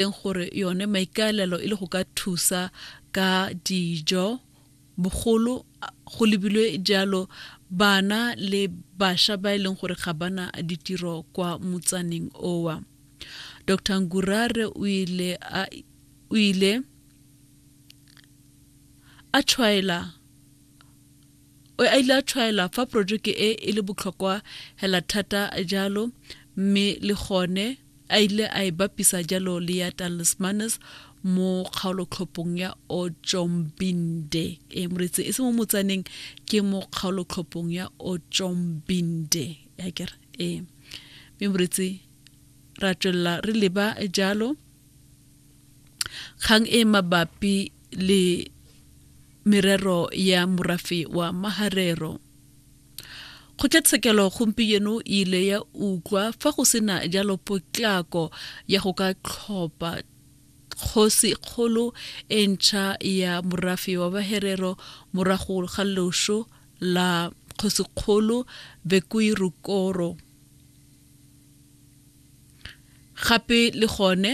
teng gore yone maikaelelo e le go ka thusa ka dijo bogolo go lebilwe jalo bana le basha ba e leng gore ga bana ditiro kwa motsaneng owa dr ngurare o ile a o ile a tshwaela O a ile a tshwaela fa porojeke e e le botlhokwa hela thata jalo mme le gone a ile a e bapisa jalo le ya Talismanes mo kgaolotlhophong ya Otjombinde. E moretsi e se mo motsaneng ke mo kgaolotlhophong ya Otjombinde. Ya kere e. Mme moretsi ra tswelela re leba jalo kgang e mabapi le merero ya morafe wa maharero kgotlatshekelo gompieno e ile ya utlwa fa go sena jalo potlako ya go ka tlhopha kgosi kgolo e ntšha ya morafe wa baherero morago ga loso la kgosi kgolo bekuirukoro gape le gone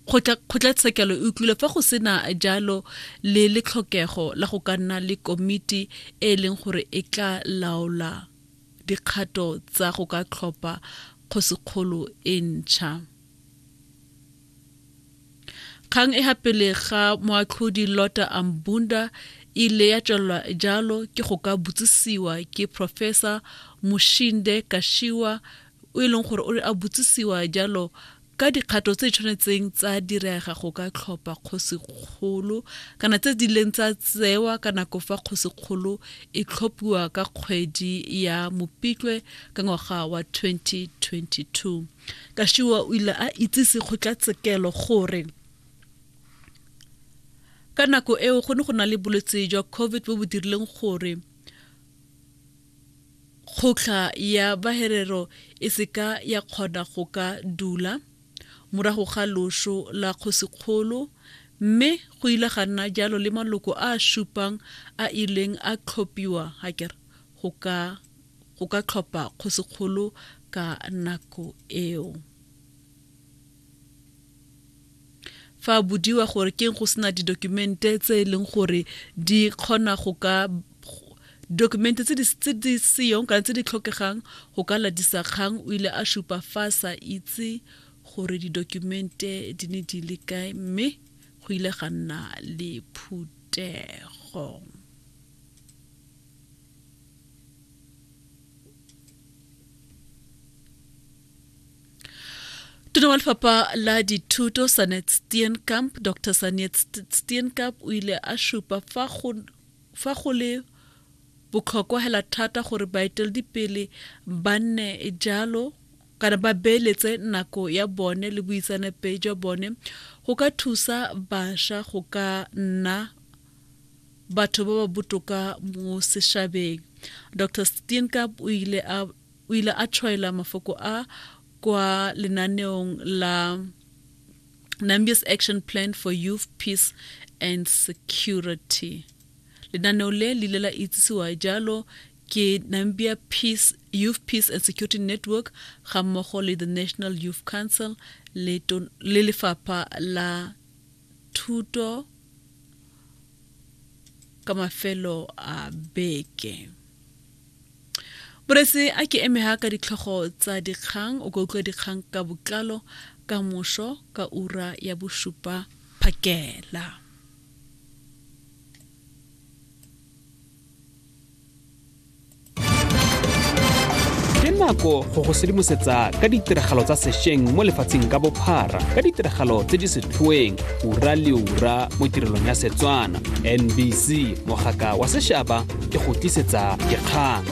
kgotlatshekelo e utlwile fa go sena jalo le letlhokego la go ka nna le komiti e e leng gore e tla laola dikgato tsa go ka tlhopha kgosikgolo e ntšha kgang e gapele ga moatlhodi lota ambunda e ile ya tswelelwa jalo ke go ka botsisiwa ke professor moshinde kashiwa o e leng gore o a botsisiwa jalo ka dikgato tse tshwanetseng tsa direga go ka tlhopha kgosikgolo kana tse di leng tsa tsewa ka nako fa kgosikgolo e tlhophiwa ka kgwedi ya mopitlwe ka ngwaga wa 2022 Kashiwa o ile a itsise kgotlatshekelo gore ka nako eo go ne go na le bolwetse jwa covid bo bo dirileng gore kgoktlha ya baherero e seka ya kgona go ka dula morago ga loso la kgosikgolo mme go ile ga nna jalo le maloko a a supang a ileng a tlhophiwa hakere go ka go ka tlhopha kgosikgolo ka nako eo. fa a bodiwa gore keng go sena didokumente tse e leng gore di kgona go ka dokumente tse di seyong kana tse di tlhokegang go ka latisa kgang o ile a supa fa a sa itse gore didokumente di ne di le kae mme go ile ga nna le phuthego tona wa lefapha la dithuto sanet steenkamp dr sanet steenkamp o ile a šupa fa go fa go le botlhokwa hela thata gore baeteledipele ba nne jalo kana ba beeletse nako ya bone le boitsanepe jwa bone go ka thusa basha go ka nna batho ba ba botoka mo sešabeng dr steenkamp o ile a o ile a tshwaela mafoko a kwa lenaneong la Nambia's Action Plan for Youth, Peace and Security. Lenaneo le le ile la itsisiwa jalo ke Nambia Peace, Youth Peace and Security Network ga mmogo le the National Youth Council le lefapha la thuto ka mafelo a beke borese a ke eme ha ka ditlhogo tsa dikgang o ka utlwa dikgang ka botlalo ka moso ka ura ya bosupa phakela ke nako go go sedimosetsa ka ditiragalo tsa sešweng mo lefatsheng ka bophara ka ditiragalo tse di setlhoeng ura le ura mo tirelong ya setswana nbc mogaka wa sešaba e go tlisetsa dikgang